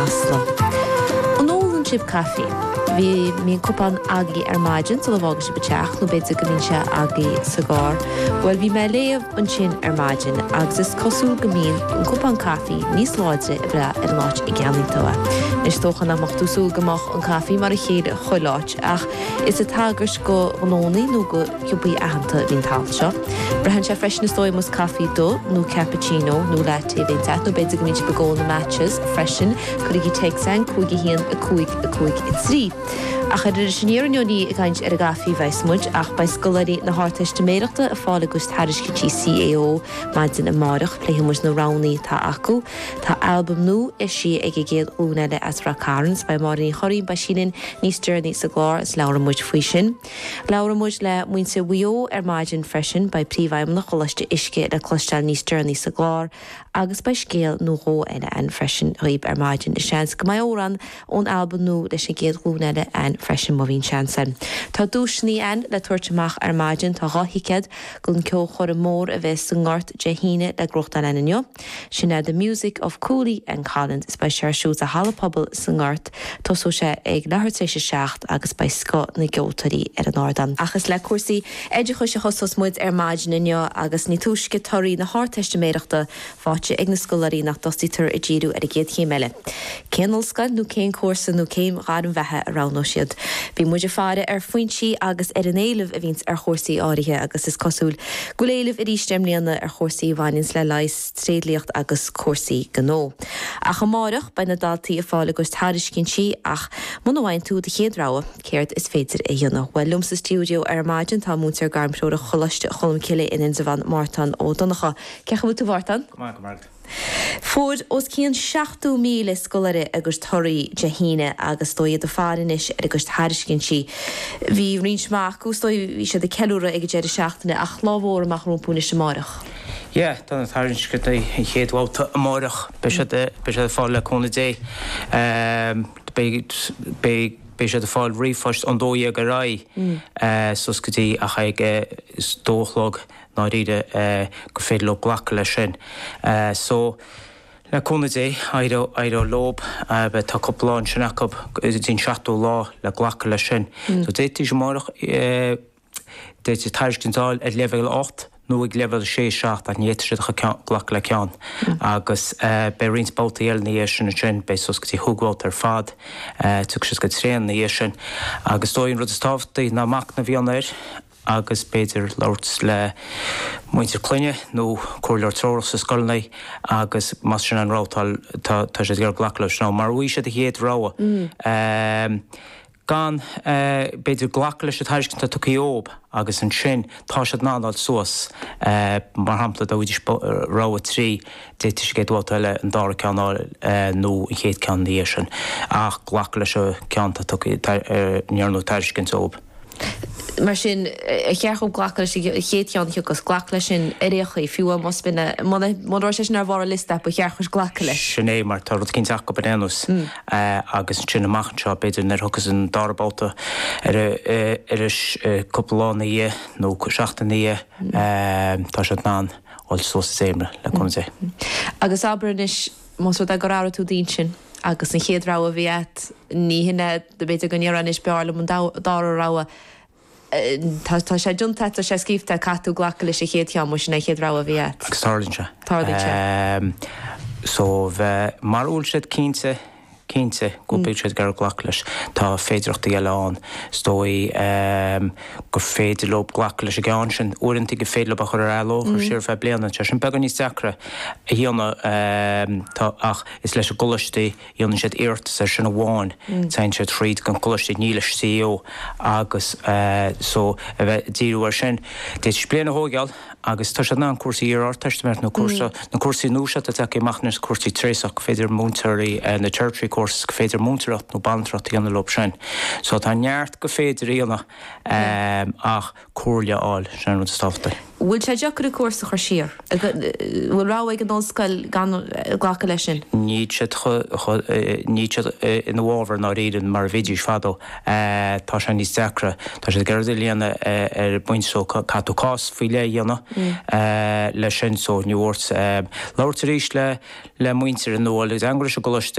An ólann sibh caife? Bhí, mbíonn cupán againn ar maidin sula bhfágann sibh an teach, nó b'fhéidir go mbíonn sé againn sa gcarr. Bhuel, bhí mé ag léamh ansin ar maidin, agus is cosúil go mbíonn an cupán caife níos láidre ag brath ar an áit a gceannaíonn tú é. Anois, dócha nach mbeadh tú ag súil go mbeadh an caife mar a chéile chuile áit, ach is ag tagairt do ghnónnaí nó do Chomhlachtaí aitheanta a bhí an t-alt seo. Braitheann sé freisin is dóigh, más caife dubh nó cappuccino nó latte a bhíonns agat, nó b'fhéidir go mbíonn sibh ag ól na matchas freisin, cuirigí téacs againn 51 5 5 3. Ach ar Iris Aniar inniu ní ag caint ar an gcaife a bheas muid ach beidh scoláirí na hArdteistiméireachta ag fáil a gcuid tairiscintí CAO maidin amárach. Pléifidh muid na roghannaí atá acu. Tá albam nua eisithe ag an gcéad ghlúin eile as Rath Cairn. Is beidh Máire Ní Churraoin, beidh sí linn níos deireanaí sa gclár agus labhróidh muid faoi sin. Labhróidh muid le muintir Mhaigh Eo ar maidin freisin, beidh Príomhfheidhmeannach Choláiste Uisce le cloisteáil níos deireanaí sa gclár agus beidh scéal nó dhó eile againn freisin dhaoibh ar maidin. Is seans go mbeidh amhrán againn ón albam nua leis an gcéad ghlúin eile ann freisin, má bhíonn seans againn. Tá duaiseanna againn le tabhairt amach ar maidin, tá dhá thicéad don cheolchoirm mhór a bheas sa nGort Dé hAoine le gnóthachtáil againn inniu. Sin é The Music of Cooley and Callinan is beidh sé ar siúl sa Halla Pobail sa nGort, tosóidh sé ag leathuair tar éis a seacht agus beidh scoth na gceoltóirí ar an ardán. Ach is le cúrsaí oideachais a thosós muid ar maidin inniu agus ní túisce torthaí na hArdteistiméireachta faighte ag na scoláirí ná go dtosaítear ag díriú ar an gcéad chéim eile. Cén ollscoil nó cén cúrsa nó cén ghairm bheatha a roghnóidh siad? Bíonn muid ag faire ar phointí agus ar an éileamh a bhíonns ar chúrsaí áirithe agus is cosúil go bhfuil éileamh arís i mbliana ar chúrsaí a bhaineanns le leigheas, tréidliacht agus cúrsaí gnó. Ach amárach beidh na daltaí ag fáil a gcuid tairiscintí ach muna bhfaigheann tú do chéad rogha, céard is féidir a dhéanamh? Bhuel, liom sa stiúideo ar maidin tá múinteoir gairmthreorach Choláiste Cholmcille in Indreabhán, Mártan Ó Donnchadha. Cén chaoi a bhfuil tú Mártan? Go maith, go maith. Fuair os cionn 70,000 scoláire a gcuid torthaí Dé hAoine agus is dóigh iad ag faire anois ar a gcuid tairiscintí. Bhí roinnt maith acu, is dóigh, bhí siad ag ceiliúradh ag an deireadh seachtaine ach lá mór amach rompu anois amárach. Yeah, tá na tairiscintí, an chéad bhabhta amárach, beidh siad, beidh siad ag fáil le cúnamh Dé. Beidh, beidh siad ag fáil ríomhphoist ón dó dhéag ar aghaidh suas go dtí, ach ag a dó a chlog. ndáiríre gur féidir leo glacadh leis sin. So, le cúnamh Dé, éireoidh, éireoidh leob, tá cúpla lá ansin acu go dtí an seachtú lá le glacadh leis sin. So, d'fhéadfaidís amárach, d'fhéadfaidís tairiscint a fháil ag leibhéal a hocht nó ag leibhéal a sé, a seacht ach ní fhéadfadh siad a chur ceann, glacadh le ceann. Agus beidh roinnt babhtaí eile ina dhiaidh sin ansin, beidh suas go dtí cúig bhabhta ar fad, tiocfaidh siad go tréan ina dhiaidh sin. Agus is dóigh an rud is tábhachtaí ná machnamh a dhéanamh air, agus b'fhéidir labhairt le muintir na clainne nó comhairleoir treorach sa scoil anois agus más sin an rogha atá, tá, tá siad ag iarraidh glacadh leis nó mura bhfaigheann siad an chéad rogha, b'fhéidir, glacadh leis an tairiscint atá tugtha dhóibh agus ansin tá siad in ann dul suas, mar shampla, dá bhfaighidís rogha a trí, d'fhéadfadh siad sa gcéad bhabhta eile an dara ceann a fháil nó an chéad ceann ina dhiaidh sin ach glacadh leis an ceann atá tugtha, a ndearnadh tairiscint dhóibh. Mar sin, ar cheart dhom glacadh leis an chéad cheann a thiocfas? Glac leis sin ar aon chaoi, fiú más mionna. Mura raibh sé sin ar bharr an liosta, ba cheart dhuit glacadh leis. Sin é, mar tá rud éigin dearfa acub ar aon nós. Agus ansin, amach anseo, b'fhéidir, nuair a thiocfas an dara babhta ar ais, cúpla lá ina dhiaidh, nó seachtain ina dhiaidh, tá siad in ann dul suas an dréimire, le cúnamh Dé. Agus abair anois. Más rud é gur athraigh tú d'intinn agus an chéad rogha a bhí agat, ní hin é, b'fhéidir go ndéarfá anois, b'fhearr liom an dara rogha. Tá sé deunta agat, tá sé scríobhta agat, caithfidh tú glacadh leis an chéad cheann, mar sin é an chéad rogha a bhí agat. Agus tarlaíonn sé. Tarlaíonn sé. So, mura bhfuil siad cinnte. Cinnte, go bhfuil siad ag goil a glacadh leis. Tá féidireachtaí eile ann. Is dóigh gur féidir leo glacadh leis an gceann sin. Uaireanta gur féidir leo a chur ar athló, a chur siar ar feadh bliana. Tá sin beagán níos deacra a dhéanamh. Tá, ach is leis an gcoláiste, a dhéanann siad iarratas air sin amháin. Téann siad thríd an gcoláiste, ní leis an CAO. Agus so, a bheith ag díriú air sin. D'fhéadfaidís bliain a thóigeáil. Agus tá siad in ann cúrsaí iar-ardteistiméireacht nó cúrsa, na cúrsaí nua seo atá tagtha amach anois, na cúrsaí treasach, go féidir múinteoirí, na tertiary courses, go féidir múinteoireacht nó banaltracht a dhéanamh leo sin. So tá neart go féidir a dhéanamh ach comhairle a fháil, sin an rud is tábhachtaí. Bhfuil sé deacair an cúrsa a chur siar? Bhfuil rogha ag an ollscoil gan glacadh leis sin? Níl siad chomh, níl siad ina bhfabhar i ndáiríre mar a bhídís fadó. Tá sé níos deacra. Tá siad ag iarraidh iad a líonadh ar an bpointe so caithfidh tú cás faoi leith a dhéanamh leis sin. So mar a dúirt. Labhairt arís le muintir nó dhul i dteagmháil leis an gcoláiste.